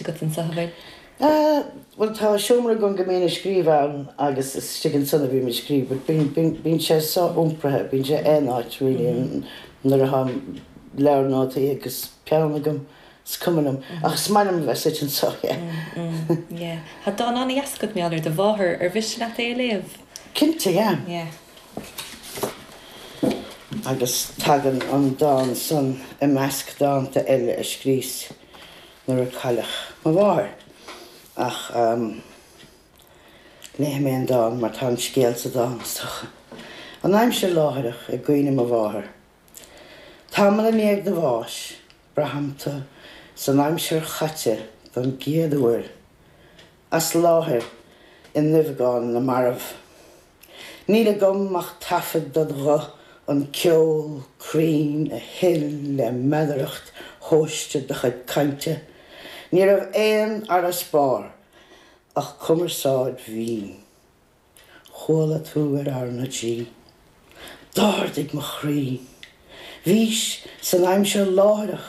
agat anso, an bhfuil? Bhuel, tá seomra agam go mbím ag scríobh ann agus is istigh ansan a bhím ag scríobh but bíonn, bíonn sé so-iompraithe, bíonn sé aon áit really nuair atá mo leabhar nótaí agus peann agam, is cuma liom ach is maith liom a bheith suite anso, yeah. Yeah. Tá dán an-deas agat mar gheall ar do mháthair, ar mhiste leat é a léamh? Cinnte, yeah. Yeah. Agus tagann an dán san i measc dánta eile a scríos. nuair a cailleadh mo mháthair. Ach, ahem, léifidh mé an dán mar tá an scéal sa dán, is dócha. An aimsir láithreach, i gcuimhne mo mháthar. Tamall i ndiaidh do bháis, braithim tú san aimsir chaite don gcéad uair, as láthair i nduibheagán na marbh. Níl agam ach taifead ded ghuth, an ceol cruinn a shil le meadaracht thomhaiste do chuid cainte. Ní raibh aon fharasbarr ach cumarsáid mhín. Chuala tú ar R na G. D'ardaigh mo chroí. Bhís san aimsir láithreach.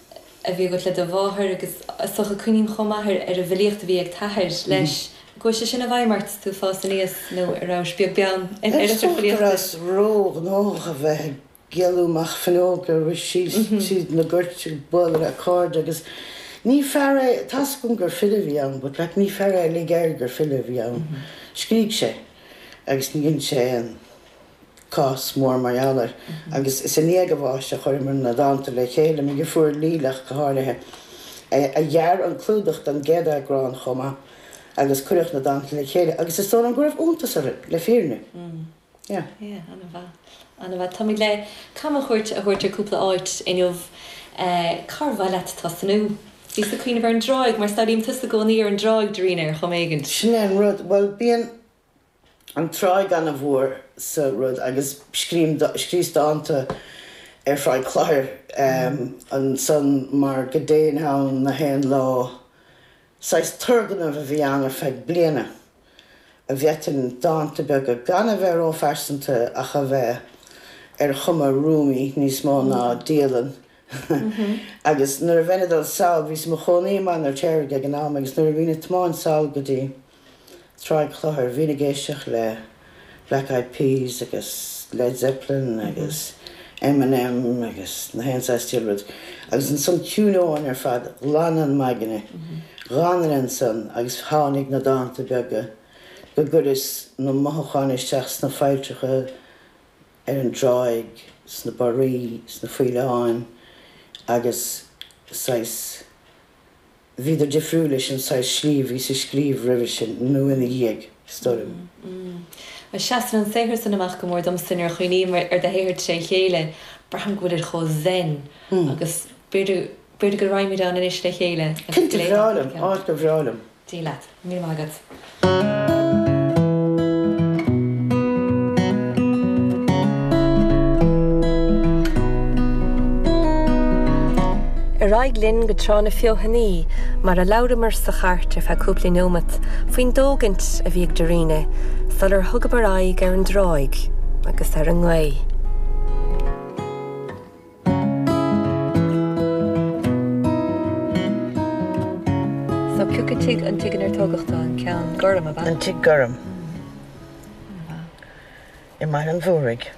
a bhí agat le do mháthair agus is dócha cuimhním chomh maith ar an bhfilíocht a bhí ag t-athair leis, an gcuaigh sé sin i bhfeidhm ort is tú ag fás aníos nó an rabhais beag beann ar a chuid filíochta. Is dócha go rabhas ró-ghnóthach a bheith ag éaló amach fuinneoga ag rith síos tríd na goirt ag bualadh le cairde agus ní fear é, tá's agam gur file a bhí ann but like ní fear é a lig air gur file a bhí ann, scrígh sé agus ní dhein sé aon. cás mór mar gheall air, agus is i ndiaidh a bháis a chuireamar na dánta le chéile, mo dheirfiúr Lilah go háirithe, a dhear an clúdach don gcéad eagrán chomh maith, agus cuireadh na dánta le chéile agus is dóigh liom go raibh iontas orainn, le fírinne. Yeah. Yeah, an-mhaith, an-mhaith. Táimid le camchuairt a thabhairt ar cúpla áit inniu. Cár mhaith leat tosnú? Bhíos ag cuimhneamh ar an dtráigh, mar samhlaím tusa i gcónaí ar an dtráigh, Dairena, ar chuma éigin. Sin é an rud, bhuel, bíonn, an tráigh ana mhór sa rud agus scríom, scríos dánta ar Thráigh Chloichir ansan mar go dtéinn ann na haon lá. Saghas turgnamh a bhí ann ar feadh bliana, a bhféadfainn dánta beaga gan a bheith ró-phearsanta ach a bheith ar chuma Rumi níos mó ná dialann agus nuair a bhínn ag dul sall, bhíos i mo chónaí i mBaile an Fheirtéaraigh ag an am agus nuair a bhínn ag tiomáint sall go dtí. Tráigh Chloichir, bhínn ag éisteacht le Black Eyed Peas agus Led Zeppelin agus Eminem agus na haon saghas diail rud, agus ansan chiúnóinn ar fad, ghlanainn m'aigne, dh'fhanainn ansan agus tháinig na dánta beaga go gcuireas na mothúcháin isteach sna failltreacha ar an dtráigh, sna barraí, sna faoileáin agus saghas. Bhíodar difriúil leis an saghas slí a bhíos ag scríobh roimhe sin, nó ina dhiaidh, stoirm. Bhuel, seasann an saothar sin amach go mór domsa nuair a chuimhním ar do shaothar trí chéile, braithim go bhfuilid chomh zen agus b'fhéidir go raghfaimid ann anois le chéile agus go léifeá cúpla ceann acu. Cinnte, bhreá liom, áit gur bhreá liom. Dia leat. Níl agat. Ar aghaidh linn go Trá na Feothanaí mar a labhramar sa chairt ar feadh cúpla neomat faoin dtógaint a bhí ag Dairena sular thugamar aghaidh ar an dtráigh agus ar an ngaoth. So pioc an tigh, an tigh inar tógadh tú, an ceann gorm, ab ea? An tigh gorm. I mBaile an Mhúraigh.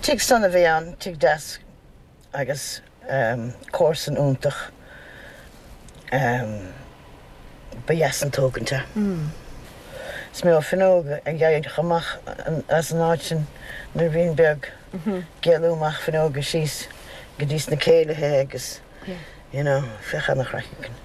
Tigh sona a bhí ann, tigh deas agus comharsain iontach ba dheas an tógaint é. Is mó fuinneog a d'éalaíos amach as an áit sin nuair a bhínn beag, ag éalú amach fuinneoga síos go dtí sna céilithe agus, you know, bhíodh ana chraic againn.